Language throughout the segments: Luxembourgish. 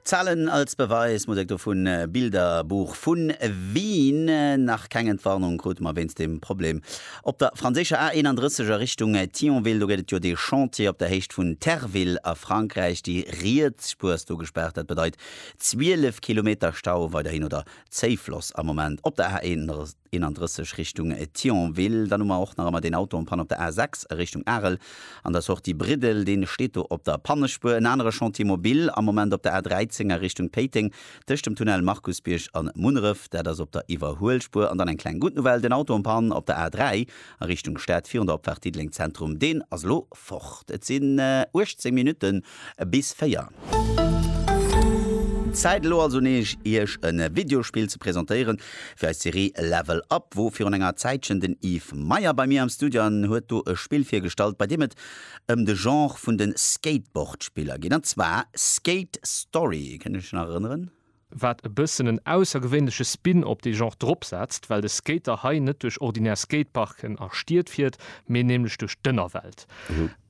Zahlen als Beweis, Musek dovun, Bilderbuch vun Wien. Nach keng Entwarnung krute mer wéinst dem Problem op der franséischer A 31 a Richtung Thionville. Do gëtt et jo dee Chantier op der Héicht vun Terville a Frankräich. Déi riets Spuer ass do gespaart. Dat bedeit 12 Kilometer Stau weiderhin oder Zéifloss am Moment op der A 31. 31 Richtung Thionville. Dann hu mer och nach ëmmer deen Auto en panne op der A6 a Richtung Arel an der Sortie Briddel. Dee steet do op der Pannespuer. En anere Chantier mobil am Moment op der A13 a Richtung Péiteng tëscht dem Tunnel Markusbierg an Munneref. Dat ass op der Iwwerhuelspuer. An dann eng kleng gutt Nouvelle, den Auto en panne op der A3 a Richtung Stad virun der Opfaart Diddeleng Zentrum. Deen ass elo fort. Et sinn 18 Minutten Bis 4. Zäit elo also nees iech e Videospill ze presentéieren fir eis Serie Level Up wou virun enger Zäitchen den Yves Meyer bei mir am Studio an huet do e Spill virgestallt bei deem et ëm de Genre vun de Skateboardspiller geet an zwar Skate Story. Kënnt iech nach erënneren? wat e bëssen en aussergewéinleche Spin op dee Genre drop setzt, well de Skater hei net duerch ordinär Skateparken a Stied fiert, mee nämlech duerch d'Ënnerwelt.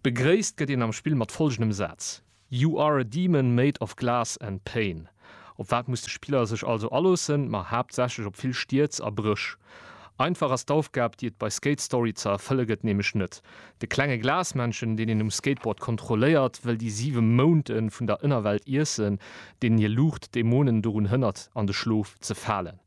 Begréisst gëtt een am Spill mat follgendem Saz, You are a demon made of glass and pain. Op wat muss de Spiller sech also aloossen? Ma haaptsächlech op vill Stierz a Bréch. Einfach ass d'Aufgab, déi et bei Skate Story ze erfëlle gëtt, nämlech net. De klenge Glasmännchen, deen een um Skateboard kontrolléiert, wëll déi siwe Mounte vun der Ënnerwelt iessen, deenen hir Luucht d'Dämonen dorun hënnert, an de Schlof ze falen.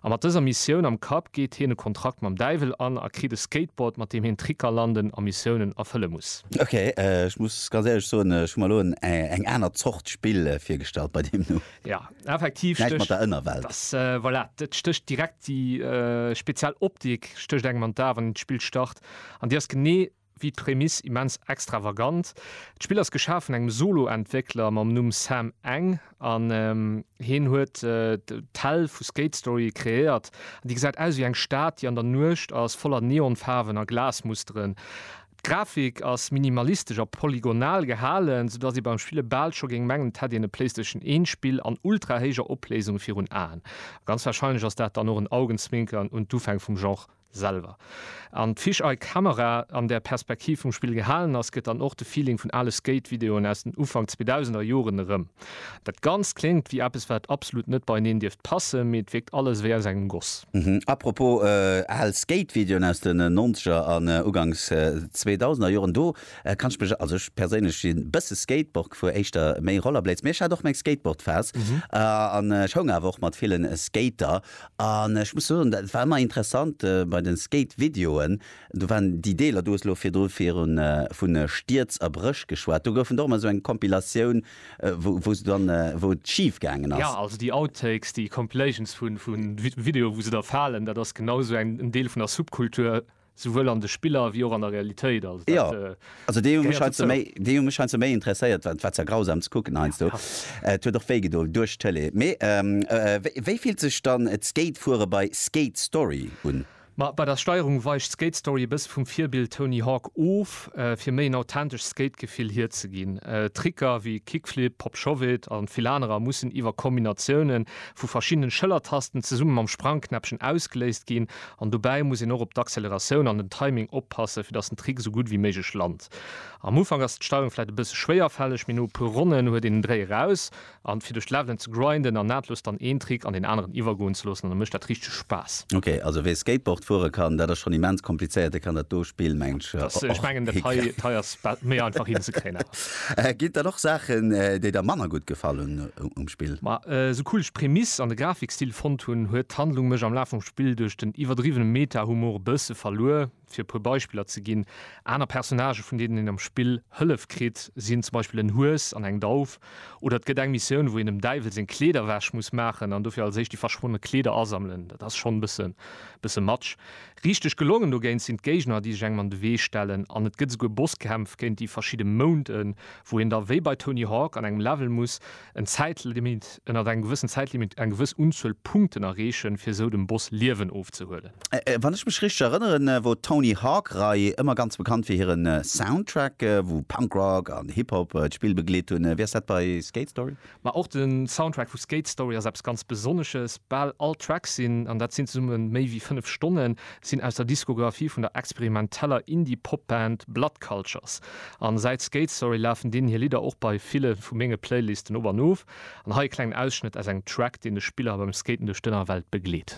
A mat dëser Missioun am Kapp geet hien e Kontrakt mam Däiwel an a kritt e Skateboard, mat deem hien Tricker landen a Missiounen erfëlle muss. Ok, ech muss ganz éierlech soen, ech hu mer elo eng aner Zort Spill virgestallt bei deem Numm. Jo, effektiv stécht. Näischt mat der Ënnerwelt. Voilà, et stécht direkt déi speziell Optik stécht engem an d'A wann een d'Spill start. An déi ass genee wéi d'Prämiss immens extravagant. D'Spill ass geschaf vun engem Solo-Entwéckler mam Numm Sam Eng an hien huet d'Hell vu Skate Story kreéiert. An déi gesäit aus wéi eng Stad, déi an der Nuecht ass, voller Neonfaarwen a Glasmusteren. D'Grafik ass minimalistesch a polygonal gehalen, sou dass ee beim Spille bal scho géing mengen, et hätt een e Playstation 1 Spill an ultra-héijer Opléisung virun Aen. A ganz warscheinlech ass dat dann och en Augenzwinkern un d'Ufäng vum Genre. Selwer. An d'Fish Eye Camera an der Perspektiv vum Spill gehalen ass, gëtt dann och de Feeling vun ale Skate-Videoen aus den Ufank 2000er Joren erëm. Dat Ganzt kléngt wéi eppes wat absolut net beieneen dierft passen, mee et wierkt alles wéi aus engem Goss. Apropos al Skate-Videoen aus den Nonzeger an Uganks Zweedausender Joren, do kann ech mech, also ech perséinlech si bësse Skateboard gefuer, éischter méi Rollerblades, mee ech hat och meng Skateboard-Phas an ech houng awer och mat villen Skater An ech muss soen, et war ëmmer interessant bei de Skate-Videoen, do waren déi Deeler, du hues elo virdru vu Stierz a Bréch geschwat, do gouf et och ëmmer esou eng Compilatioun, wou se dann, wou et schif gaangen ass. Jo, also déi Outtakes, déi Compilations vu Videoe wou se da falen, dat ass genau esou en Deel vun der Subkultur. Souwuel an de Spiller wéi och an der Realitéit. Also dat gehéiert dozou. Déi hu mech heiansdo méi interesséiert, well et war zwar grausam ze kucken heiansdo. Et huet och wéi gedoen duerch d'Tele. Mee wéi fillt sech dann d'Skatefuere bei Skate Story un? Ma bei der Steierung weicht Skate Story e bësse vum Virbild Tony Hawk of, fir méi en authentescht Skate-Gefill hierzeginn. Tricker wéi Kickflip, Pop Shove-It a vill anerer mussen iwwer Kombinatioune vu verschiddenen Schëllertasten zesumme mam Sprangknäppchen ausgeléist ginn, An dobäi muss een och op d'Acceleratioun an den Timing oppassen, fir datt den Trick esou gutt wéi méiglech lant. Am Ufank ass d'Steierung vläit e bësse schwéierfälleg, mee no e puer Ronnen huet een den Dréi eraus. An fir duerch d'Levelen ze grinden an nahtlos dann een Trick an deen aneren iwwergoen ze loossen, da mécht dat richteg Spaass. Ok, also wee Skateboard fuere kann, dat ass schonn immens komplizéiert, dee kann dat do Spill, mengen ech, och hickréien. Ech mengen dat hei ass méi einfach hinzekréien awer. Ginn et dann och Saachen, déi der manner gutt gefallen um Spill? Ma sou cool ech d'Prämiss an de Grafikstil fonnt hunn, huet d'Handlung mech am Laf vum Spill duerch den iwwerdriwwene Meta-Humor e bësse verluer. Fir e puer Beispiller ze ginn, Aner Personnagë vun deenen een am Spill Hëllef kritt, sinn zum Beispill en Hues an eng Dauf. Oder et gëtt eng Missioun, wou een dem Däiwel seng Kleeder ewech muss maachen an dofir als éischt déi verschwonne Kleeder asammelen. Dat ass schonn e bësse matsch. Richteg gelongen dogéint sinn d'Géigner, déi sech engem an de Wee stellen, an et gëtt esouguer Bosskämpf géint déi verschidde Mounten, wou een da wéi bei Tony Hawk an engem Level muss en Zäitlimit, ënnert engem gewëssen Zäitlimit, eng gewëss Unzuel Punkten erreechen, fir esou dem Boss Liewen ofzehuelen. Wann ech mech richteg erënneren, wor d'Tony Hawk Rei ëmmer ganz bekannt fir hiren Soundtrack, wou Punk Rock an Hip Hop d'Spill begleet hunn. Wéi ass dat bei Skate Story? Ma och den Soundtrack vu Skate Story ass eppes ganz Besonnesches. Bal all Tracks sinn, an dat sinn zesumme méi wéi 5 Stonnen, sinn aus der Diskografie vun der experimenteller Indie-Pop-Band Blood Cultures. An säit Skate Story lafen deenen hir Lidder och bei ville vu menge Playlisten op an of. An hei e klengen Ausschnëtt aus engem Track, deen de Spiller beim Skaten duerch d'Ënnerwelt begleet.